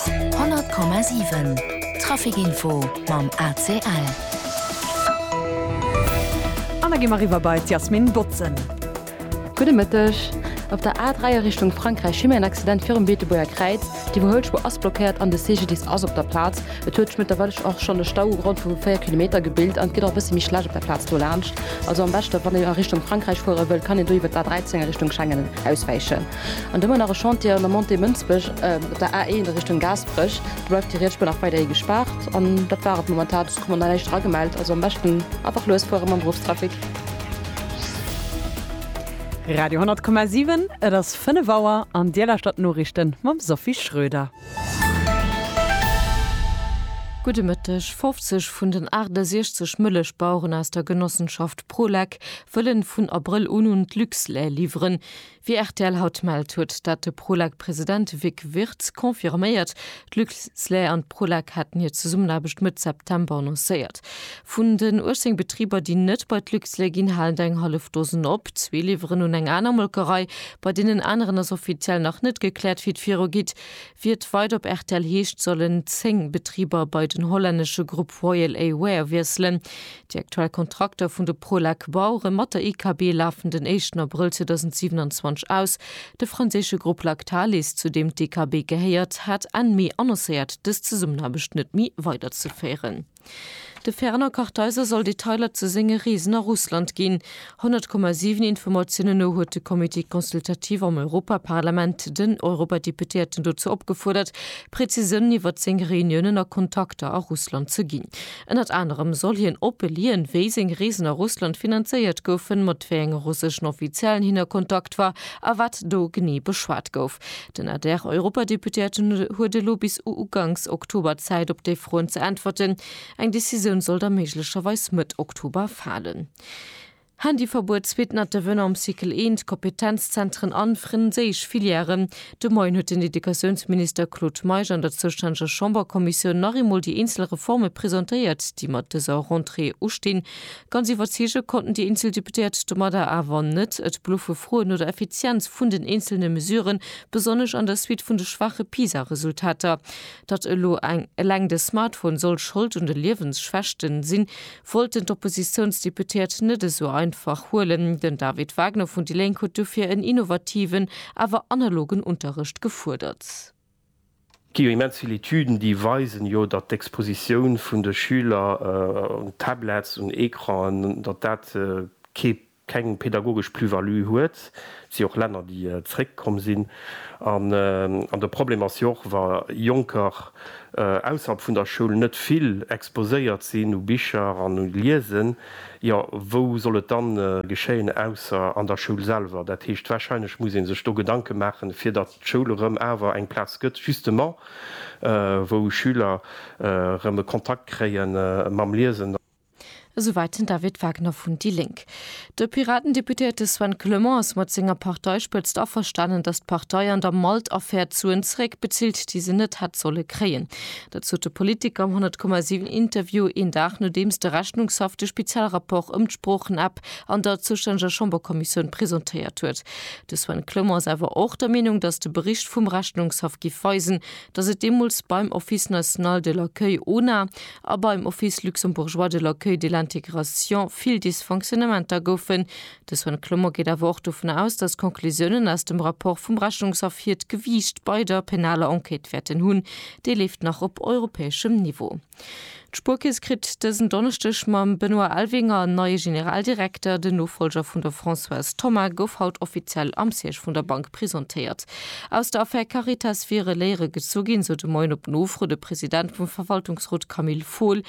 100,7 Traficinfo mam ACL. An da gi mer riwwer bei d'Yasmin Botzen. Gudde Mëtteg. Op der A 3 a Richtung Frankräich hu mir en Accident virum Beetebuerger Kräiz. Déi wou Hëllspur ass blockéiert an de CGDIS ass op der Plaz. Et huet sech mëttlerweilech och schonn e Stau u Grond vu 4 Kilometer gebilt an et gëtt och e bësse méi schlecht op der Plaz dolaanscht. Also am beschte wann een a Richtung Frankräich fuere wëllt, kann een do iwwert d'A 13 a Richtung Schengen auswäichen. An domat nach e Chantier an der Montée Mënsbech op der A1 a Richtung Gaasperech. Do bleift déi rietsch Bun nach weiderhi gespaart. An dat war et momentan. Soss krut mer nach näischt eragemellt. Also am beschten einfach lues fuere mam Beruffstrafic. Radio 10,7, et ass 5 Auer an Dir lauschtert d'Noriichten mam Sophie Schröder. Gudde Mëtteg, 50 vun den 68 Mëllechbaueren aus der Genossenschaft Prolec wëllen vun Abrëll un un d'Luxlait liwweren. Wéi rtl haut mellt, huet dat de Prolak-President Vic Wirtz confirméiert. D'Luxlait an d'Prolak haten hir Zesummenaarbecht Mëtt September annoncéiert. Vun den 18 Betriber, déi net bei d'Luxlait ginn, halen der eng hallef Dosen op. Zwee liwweren un eng aner Molkerei. Bei deenen aneren ass offiziell nach net gekläert, wéi et virugeet. Wéi et weider op rtl heescht, sollen 10 Betriber bei den hollännesche Grupp Royal A-Ware wiesselen. Déi aktuell Kontrakter vun de Prolec Bauere mat der IKB lafen den éischten Abrëll 2027 aus. De franséische Grupp Lactalis, zu deem d'IKB gehéiert, hat Enn Mee annoncéiert, dës Zesummenaarbecht net méi weiderzeféieren. De Fernand Kartheiser soll Detailer zu senge Reesen a Russland ginn. 100,7 Informatiounen no huet de Comité consultatif am Europaparlament den Europadeputéierten dozou opgefuerdert, Präzisiounen iwwert seng Reuniounen a Kontakter a Russland ze ginn. Ënnert anerem soll hien opelien, wéi seng Reesen a Russland finanzéiert goufen, mat wéi enge russeschen Offiziellen hien a Kontakt war a wat do genee beschwat gouf. Den ADR-Europadeputéierten huet elo bis uganks Oktober Zäit, op déi Froen ze äntwerten. Eng Decisioun soll da méiglecherweis Mëtt Oktober falen. Handyverbuet, Suite Not de venant am Cycle 1, Kompetenzzentren an frenséisch Filièren. De Moien huet den Educatiounsminister Claude Meisch an der zoustännege Chamberkommissioun nach eemol déi eenzel Reforme presentéiert, déi mat dëser Rentrée ustinn. Ganz iwwerzeege konnten déi eenzel Deputéiert domadder awer net. Et bluffe Froen no der Effizienz vun den eenzelne Mesuren, besonnesch an der Suite vun de schwaache PISA-Resultater. Datt elo eleng de Smartphone soll Schold un de Liewensschwächten sinn, wollten d'Oppositiounsdeputéiert net esou einfach huelen. Den David Wagner vun déi Lénk huet dofir en innovativen, awer analogen Unterrecht gefuerdert. Gi jo immens vill Etüden, déi weisen jo, datt d'Expositioun vun de Schüler un Tablets, un Ecranen, datt dat kee keng pedagogesch Plus-value huet. Et si och Länner, déi zréckkomm sinn. An de Problem ass jo och, wa Jonker ausserhalb vun der Schoul net vill exposéiert sinn u Bicher an u Liesen, jo wou soll et dann geschéien ausser an der Schoul selwer. Dat heescht, wahrscheinlech muss ee sech do Gedanke maachen, fir datt d'Schoul erëm awer eng Plaz gëtt justement, wou Schüler erëm e Kontakt kréie mam Liesen. Esouwäit den David Wagner vun déi Lénk. De Piratendeputéierte Sven Clement ass mat senger Parteispëtzt averstanen, datt d'Partei an der Malt-Affär d'Suen zeréckbezilt, déi se net hätt solle kréien. Dat sot de Politiker am 100,7 Interview een Dag nodeems de Rechnungshaff de Spezialrapport ëm d'Sproochen-App an der zoustänneger Chamberkommissioun presentéiert huet. De Sven Clement ass awer och der Meenung, datt de Bericht vum Rechnungshaff giff weisen, datt et deemools beim Office national de l'accueil, ONA, a beim Office luxembourgeois de l'accueil de l'intégration vill Dysfonctionnementer goufen. De Sven Clement geet awer och dovun aus, datt d'Conclusiounen aus dem Rapport vum Rechnungshaff hiert Gewiicht bei der penaler Enquête wäerten hunn. Déi leeft nach op europäeschem Niveau. D'Spuerkeess kritt dësen Donneschdeg mam Benoît Elvinger en neie Generaldirekter. Den Nofollger vun der Françoise Thoma gouf haut offiziell am Siège vun der Bank. presentéiert. Aus der Affär Caritas wiere Léiere gezu ginn, sou de Moien op Nofro de President vum Verwaltungsrot Camille Fohl.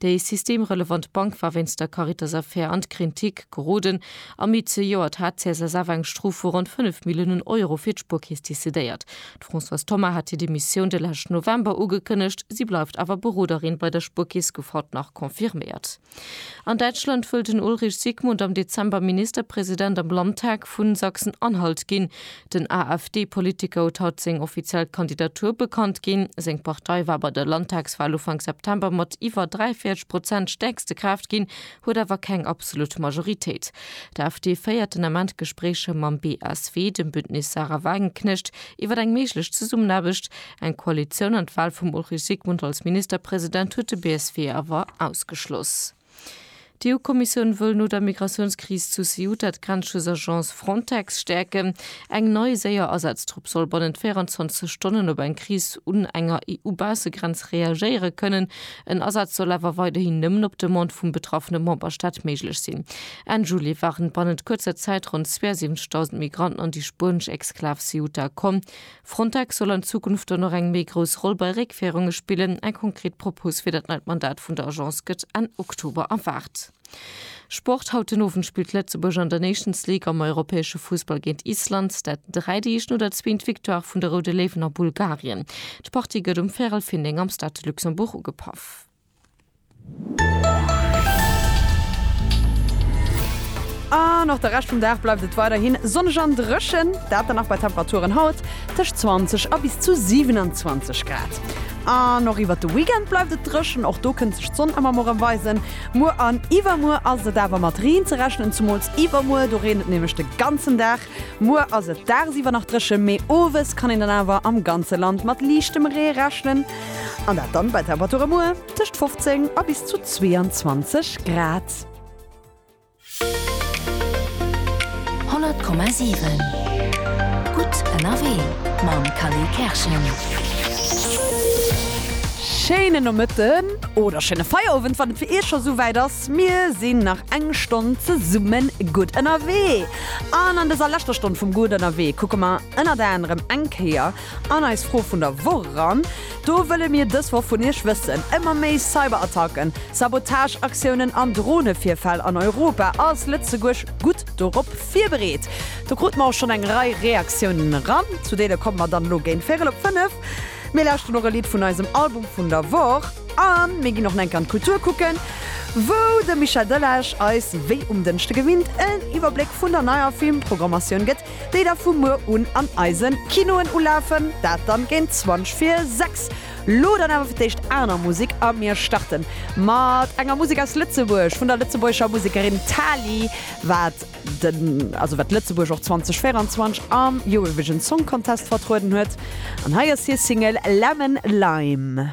Déi systemrelevant Bank war wéinst der Caritas-Affär an d'Krintik geroden. Am Mee zejoert hat d'CSSF eng Strof vu ronn 5 Milliounen Euro fir d'Spuerkeess decidéiert. D'Françoise Thoma hat hir Demissioun de leschten November ugekënnegt. Si bleift awer Beroderin bei der Spuerkeess, gouf haut nach confirméiert. An Däitschland wëll den Ulrich Sigmund am Dezember Ministerpresident am Landtag vu Sachsen-Anhalt ginn. Den AfD-Politiker huet haut seng offiziell Kandidatur bekannt ginn. Seng Partei war bei der Landtagswal Ufank September mat iwwer 43 Prozent stäerkste Kraaft ginn, huet awer keng absolut Majoritéit. D'AfD féiert den Ament Gespréicher mam BSW, dem Bündnis Sarah Wagenknecht, iwwer eng méiglech Zesummenaarbecht. Eng Koalitioun an d'Wal vum Ulrich Sigmund als Ministerpresident huet de BSW awer ausgeschloss. D'EU-Kommissioun wëll no der Migratiounskris zu Ceuta d'Grenzschutzagence Frontex stäerken. Eng nei, séier Asaztrupp soll bannent 24 Stonnen op eng Kris un enger EU-Baussegrenz reagéiere kënnen. En Asaz soll awer weiderhin nëmmen op Demande vum betraffene Memberstaat méiglech sinn. Enn Juli waren bannent kuerzer Zäit ronn 72.000 Migranten an déi spuenesch Exklav Ceuta komm. Frontex soll an Zukunft dann och eng méi grouss Roll bei Réckféierunge spillen. Eng konkret Propos fir dat neit Mandat vun der Agence gëtt Enn Oktober erwaart. Sport, Haut den Owend spillt Lëtzebuerg an der Nations League am europäesche Fussball géint Island. Dat dräit Eescht no der zweent Victoire vun de Roude Léiwen a Bulgarien. D'Partie gëtt um Värel Findeng am Stade de Luxembourg ugepaff. An och de Rescht vum Dag bleift et weiderhi sonneg an dréchen, dat dann nach bei Temperaturen haut tëscht 20 a bis zu 27 Grad. An och iwwert de Weekend bleift et dréchen, och do kënnt sech d'Sonn ëmmer mol rëm weisen. Muer an iwwermuer ass et awer mat Reen ze rechnen, zumools iwwermuer, do reent et nämlech de ganzen Dag. Muer ass et dagsiwwer nach dréchen, mee owes kann een dann awer am ganze Land mat liichtem Ree rechnen, an dat dann bei Temperature muer tëscht 15 a bis zu 22 Grad. 100,7 gutt ënnerwee mam Khalil Kerschen. Schéinen Nomëtten oder schéine Feierowend wann et fir Iech scho souwäit ass. Mir sinn nach eng Stonn zesummen gutt ënnerwee. An an dëser leschter Stonn vum Gutt Ënnerwee kucke mer ënnert anerem eng Kéier an eis Fro vun der Woch eran. Do wëlle mir dës Woch vun Iech wëssen, Ëmmer méi Cyberattacken, Sabotageaktiounen an Dronevirfäll an Europa, Ass Lëtzebuerg gutt dorop virbereet? Do krute mer och schonn eng Rei Reaktiounen eran. Zu deene komme mer dann elo géint véierel op fënnef. Mir lauschten och e Lidd vun eisem Album vun der Woch. An mir ginn och enk an d'Kultur kucken, wou de Michel Delage eis wéi um Dënschde gewinnt en Iwwerbléck vun der neier Filmpprogrammatioun gëtt, déi da vu muer un an eise Kinoen ulafen. Dat dann géint 20 vir 6. Lo dann awer fir d'éischt aner Musek a mir starten mat enger Musek aus Lëtzebuerg vun der lëtzebuergescher Musekerin Tali, wat. den, also wat Lëtzebuerg och 2024 am Eurovision Song Contest vertrueden huet. An hei ass hir Single Lemon Lime.